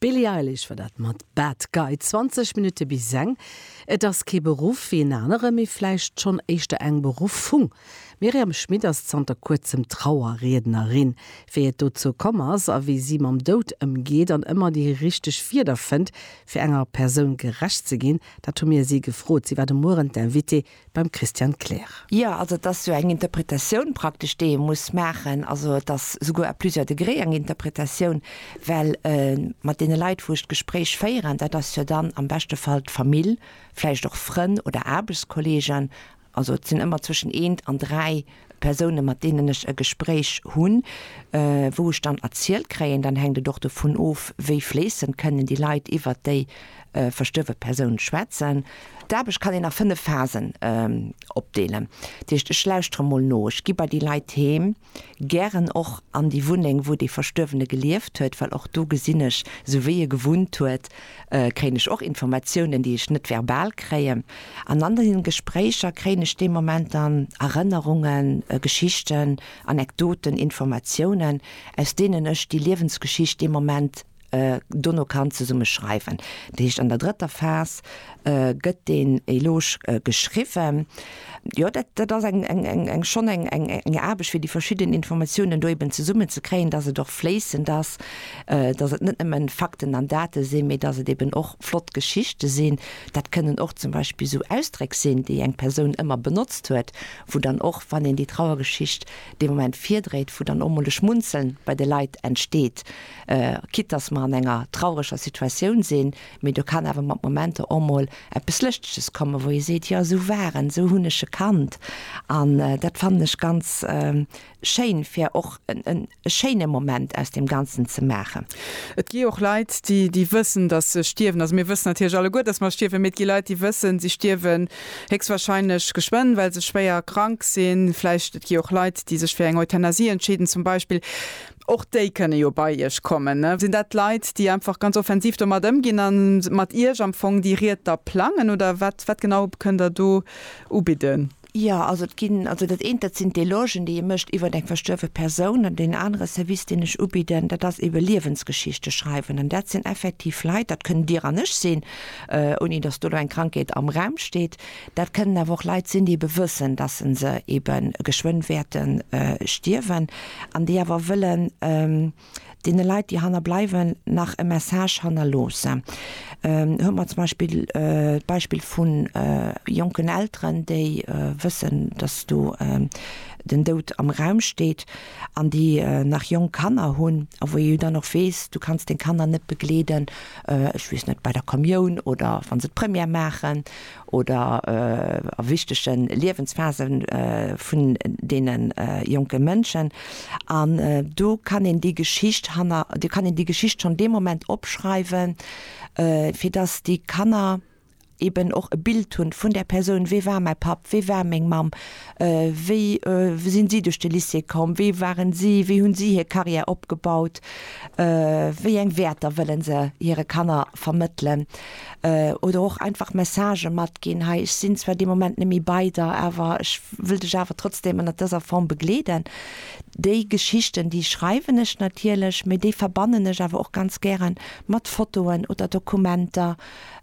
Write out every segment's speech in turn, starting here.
D'Billie Eilish war dat mat Bad Guy. 20 Minutte bis eng. Et ass kee Beruff wéi en anere, mee vläicht schonn éischter eng Beruffung. D'Myriam Schmit ass zanter kuerzem Trauerriednerin. Wéi et dozou komm ass a wéi si mam Doud ëmgeet an ëmmer déi richteg Wierder fënnt, fir enger Persoun gerecht ze ginn, dat hu mir si gefrot. Si war de Mueren d'Invitée beim Christian Klähr. Jo, also et ass jo eng Interpretatioun praktesch, déi ee muss maachen. Also et ass souguer à plusieurs degrés eng Interpretatioun, well mat deene Leit, wou ech d'Gespréich féieren, dat ass jo dann am beschte Fall d'Famill, vläicht och Frënn oder Aarbechtskolleegen, also et sinn ëmmer zwëschen eent an dräi. Persounen, mat deenen ech e Gespréich hunn, wou ech dann erzielt kréien, dann hänkt et och dovun of, wéi fléissend kënnen déi Leit iwwert déi verstuerwe Persoun schwätzen. D'Aarbecht kann een a fënnef Phasen opdeelen. Dat heescht, ech lauschtere mol no, ech gi bei déi Leit heem, gären och an déi Wunneng, wou dee Verstuerwene gelieft huet, well och do gesinn ech, esou wéi e gewunnt huet, kréien ech och Informatiounen, déi ech net verbal kréien. An an deenen Gespréicher kréien ech dee Moment dann Erënnerungen, Geschichten, Anekdoten, Informatiounen, aus deenen ech déi Liewensgeschicht dee Moment dono kann zesumme schreiwen. Dat heescht, an der drëtter Phas gëtt deen Eloge geschriwwen. Jo, dat, dat ass eng, eng, eng, eng, schonn eng, eng, eng Aarbecht, fir déi verschidden Informatiounen do eben zesummen ze kréien, dass et och fléissend ass, dass et net nëmme Fakten an Date sinn, mee dass et eben och flott Geschichte sinn. Dat kënnen och zum Beispill esou Ausdréck sinn, déi eng Persoun ëmmer benotzt huet, wou dann och, wann een déi Trauergeschicht dee Moment virdréit, wou dann och mol e Schmunzeln bei de Leit entsteet, quitte dass mer an enger traureger Situatioun sinn. Mee do kann awer mat Momenter och mol eppes Lëschteges kommen, wou ee seet, jo esou war en, esou hunn ech e kannt. An dat fannen ech ganz schéin, fir och e schéine Moment aus deem Ganzen ze maachen. Et gi och Leit, déi wëssen, datt se stierwen. Also mir wëssen natierlech alleguer, datt mer stierwen, mee et gi Leit, déi wëssen, si stierwen héchstwahrscheinlech geschwënn, well se schwéier krank sinn. Vläicht et gi och Leit, déi sech fir eng Euthanasie entscheeden zum Beispill. Och déi kënne jo bei Iech kommen. Sinn dat Leit, déi einfach ganz offensiv domat ëmginn a mat Iech am Fong déi Ried da plangen, oder wat wat genau kënnt Der do ubidden? Jo, also et ginn, also dat eent, dat sinn d'Elogen, déi ee mécht iwwer eng verstuerwe Persoun. An deen anere Service, deen ech ubidden, dat ass eebe Liewensgeschichte schreiwen. An dat sinn effektiv Leit, dat kënnt Dir an ech sinn, ouni datt do elo eng Krankheet am Raum steet, Dat kënnen awer och Leit sinn, déi ebe wëssen, dass se se ebe geschwënn wäerte stierwen an déi awer wëllen deene Leit, déi hanner bleiwen, nach e Message hannerloossen. Hu mer zum Beispill d'Beispill vu jonken Elteren, déi wëssen, dass do den Doud am Raum steet. an déi nach jonk Kanner hunn a wou ee jo dann och weess, du kanns deng Kanner net begleeden, ech weess net, bei der Kommioun oder wa se d'Première maachen oder a wichtege Liewensphasen vun deene jonke Mënschen. An do kann een déi Geschicht hanner, do kann een déi Geschicht schonn dee Moment opschreiwen, fir datt déi Kanner, eben och e Bild hunn vun där Persoun, wee war mäi Papp, wee war meng Mamm, wéi sinn si duerch de Lycée komm, wee waren si, wéi hunn si hir Carrière opgebaut, wéi eng Wäerter wëllen se hire Kanner vermëttelen oder och einfach Messagë matginn, hei ech sinn zwar dee Moment net méi bei der, awer ech wëll dech awer trotzdem ënnert dëser Form begleeden. Déi Geschichten, déi schreiwen ech natierlech, mee déi verbannen ech awer och ganz gäre mat Fotoen oder Dokumenter,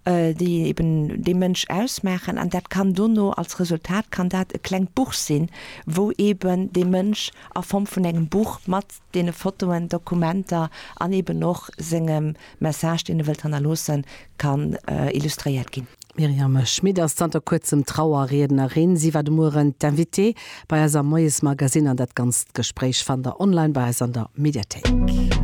déi eben dee Mënsch ausmaachen an dat kann dono als Resultat kann dat e klengt Buch sinn, wou eben dee Mënsch a Form vun engem Buch mat deene Fotoen, Dokumenter an eben och sengem Message, deen e wëllt hannerloossen, kann illustréiert ginn. D'Myriame Schmit ass zanter kuerzem Trauerriednerin. Si war de Mueren d'Invitée bei eis am Moiesmagazine an dat ganzt Gespréich fannt der online bei eis an der Mediathéik.